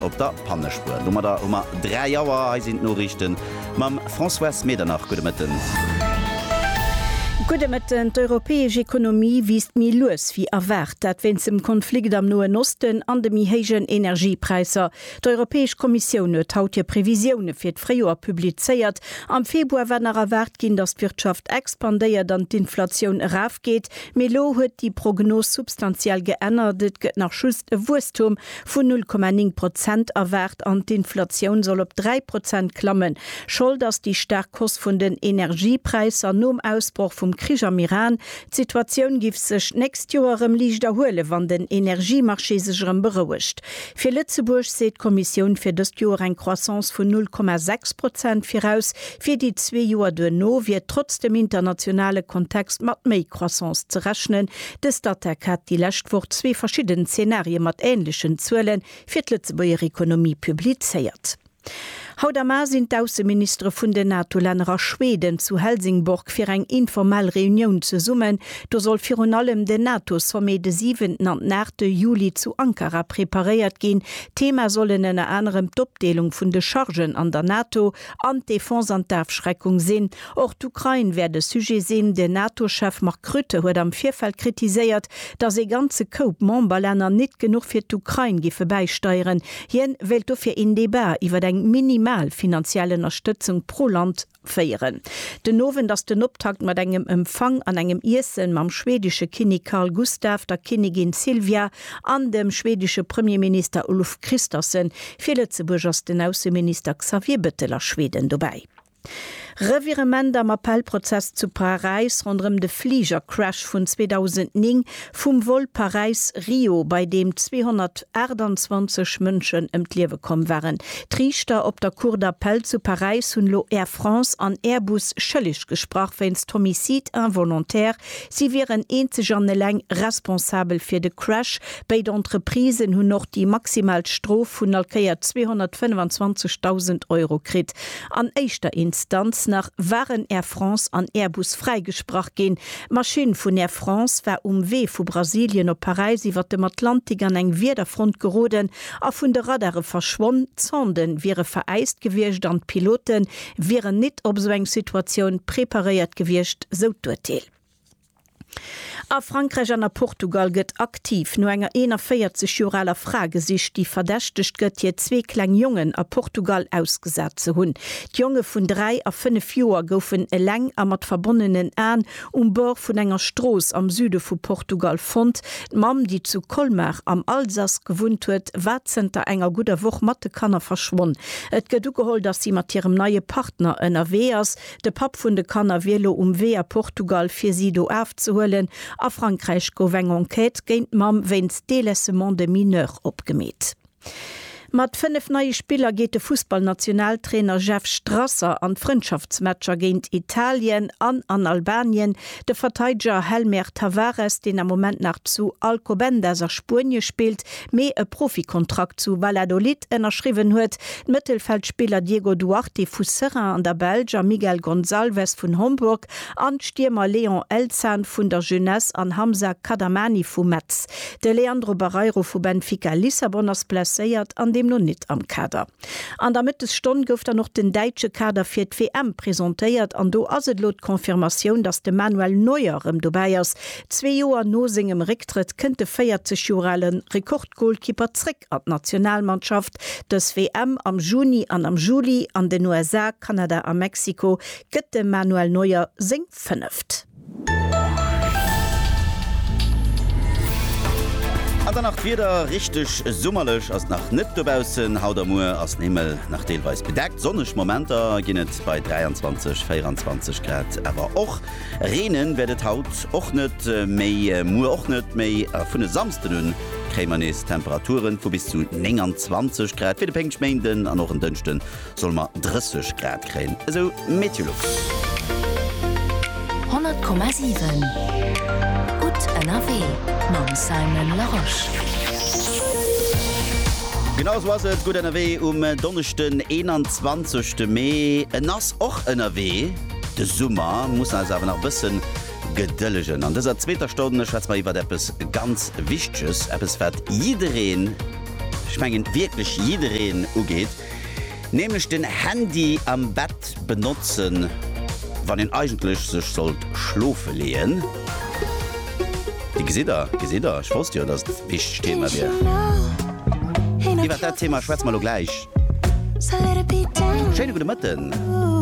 Op der Pannespuer. Domadder hu mer 3 Auer. Hei sinn d'Noriichten mam Françoise Medernach. Gudde Mëtten. Gudde Mëtten. D'europäesch Ekonomie wiisst méi lues wéi erwaart. Dat wéinst dem Konflikt am Noen Osten an de méi héijen Energiepräisser. D'Europäesch Kommissioun huet haut hir Previsioune fir d'Fréijoer publizéiert. Am Februar war nach erwaart ginn, datt d'Wirtschaft expandéiert an d'Inflatioun erafgeet. Mee elo huet déi Prognos substantiell geännert, et gëtt nach just e Wuesstum vun 0,9 Prozent erwaart an d'Inflatioun soll op 3 Prozent klammen. Schold ass déi staark Hausse vun den Energiepräisser nom Ausbroch vum Krich am Iran. D'Situatioun giff sech d'nächst Joer erëm liicht erhuelen, wann den Energiemarché sech erëm berouegt. Fir Lëtzebuerg seet d'Kommissioun fir dëst Joer eng Croissance vun 0,6 Prozent viraus. Fir déi zwee Joer duerno wier trotz dem internationale Kontext mat méi Croissance ze rechnen. De Statec hat déi lescht Woch zwee verschidden Zenarie mat änlechen Zuele fir d'Lëtzebuerger Ekonomie publizéiert. Haut am A sinn d'Ausseministere vun den NATO-Länner a Schweden zu Helsingborg fir eng informell Reunioun zesummen. Do soll virun allem den NATO-Sommet de siwenten an den aachte Juli zu Ankara preparéiert ginn. Thema sollen ënner anerem d'Opdeelung vun de Chargen an der NATO, An d'Defense an d'Afschreckung sinn. Och d'Ukrain wäert e Sujet sinn. De NATO-Chef Mark Rutte huet am Virfeld kritiséiert, datt ee ganze Koup Memberlänner nit genuch fir d'Ukrain giffe bäisteieren. Hien wéilt dofir een Debat iwwer eng minimal finanziell Ënnerstëtzung pro Land féieren. Den Owend ass den Optakt mat engem Empfang an engem Iessen mam schwedesche Kinnik Carl Gustaf, der Kinnigin Silvia An dem schwedesche Premierminister Ulf Kristersson. Fir Lëtzebuerg ass den Ausseminister Xavier Bettel a Schweden dobäi. Revirement am Appellprozess zu Paräis ronderëm de Fligercrash vun 2009 vum Vol Paräis-Rio, bei deem 228 Mënschen ëm d'Liewe komm waren. D'Riichter op der Cour d'Appel zu Paräis hunn elo Air France an Airbus schëlleg gesprach wéinst Homicide involontaire Si wieren eenzeg an eleng responsabel fir de Crash. Béid Entreprisen hunn och déi maximal Strof vun allkéier 225.000 Euro kritt. An éischter Instanz nach waren Air France an Airbus fräigesprach ginn. D'Maschinn vun Air France war um Wee vu Brasilien op Paräis iwwer dem Atlantik an eng Wiederfront geroden a vun de Radare verschwonn. D'Sonden wiere veräist gewiescht an d'Pilote wieren nit op esou eng Situatioun preparéiert gewiescht, sou d'Urteel. A Frankräich an a Portugal gëtt aktiv no enger 41 Joer aler Fra gesicht, déi verdächtegt gëtt, hir zwee kleng Jongen a Portugal ausgesat ze hunn. D'Jonge vun 3 a 5 Joer goufen eleng a mat verbonnenen Aen Um Bord vun enger Strooss am Süde vu Portugal fonnt. D'Mamm, déi zu Colmar am Alsace gewunnt huet, war zënter enger gudder Woch mat de Kanner verschwonn. Et gëtt ugeholl, dass si mat hirem neie Partner ënnerwee ass. De Papp vun de Kanner wier lo um Wee a Portugal, fir si do afzehuelen. A Frankräich gouf eng Enquête géint d'Mamm wéinst Délaissement de mineur opgemeet. Mat 5 neie Spiller geet de Fussballnationaltrainer Jeff Strasser an d'Frëndschaftsmatcher géint Italien an an Albanien. De Verteideger Helmer Tavares, deen am Moment nach zu Alcobendas a Spuenie spillt, mee e Profikontrakt zu Valladolid ënnerschriwwen huet, d'Mëttelfeldspiller Diego Duarte vu Seraing an der Belsch a Miguel Gonçalves vun Homburg an d'Stiermer Leon Elzhan vun der Jeunesse an Hamza Kadamani vu Metz. De Leandro Barreiro vu Benfica Lissabon ass blesséiert an deemno nit am Kader. An der Mëttesstonn gouf dann och den däitsche Kader fir d'WM presentéiert an do ass et elo d'Confirmatioun, datt de Manuel Neuer rëm dobäi ass. Zwee Joer no sengem Récktrëtt kënnt de 40 Joer ale Rekordgolkipper zréck. Bléck an d'Nationalmannschaft, Dës WM am Juni an am Juli an den USA, Kanada a Mexiko gëtt dem Manuel Neuer seng fënneft. An dann nach d'Wieder, Richteg summerlech ass nach net dobaussen. Haut a muer ass den Himmel nach deelweis bedeckt, sonneg Momenter ginn et bei 23, 24 Grad. Awer och reenen wäert et haut och net, méi muer och net méi. A vun e Samsden un kréie mer nees Temperature vu bis zu 29 Grad. Fir de Péngschméinden an och en Dënschde solle mer 30 Grad kréien, esou MeteoLux. 100,7 gutt ënnerwee mam Simon Larosche. Genau esou ass et, gutt ënnerwee um Donneschden 21 Mee. En ass och ënnerwee, de Summer muss eis awer nach e bëssen. Gedëllegen. An dëser zweeter Stonn schwätze mer iwwert eppes ganz Wichteges, eppes wat jiddereen, ech mengen wierklech jiddereen ugeet, nämlech den Handy am Bett benotzen, wann een eigentlech sech sollt schlofe leeën. Dir gesitt der, gesitt der, ech wosst jo, dass et e wichtegt Thema wier. Iwwert dat Thema schwätze mer elo gläich. Schéine gudde Mëtten.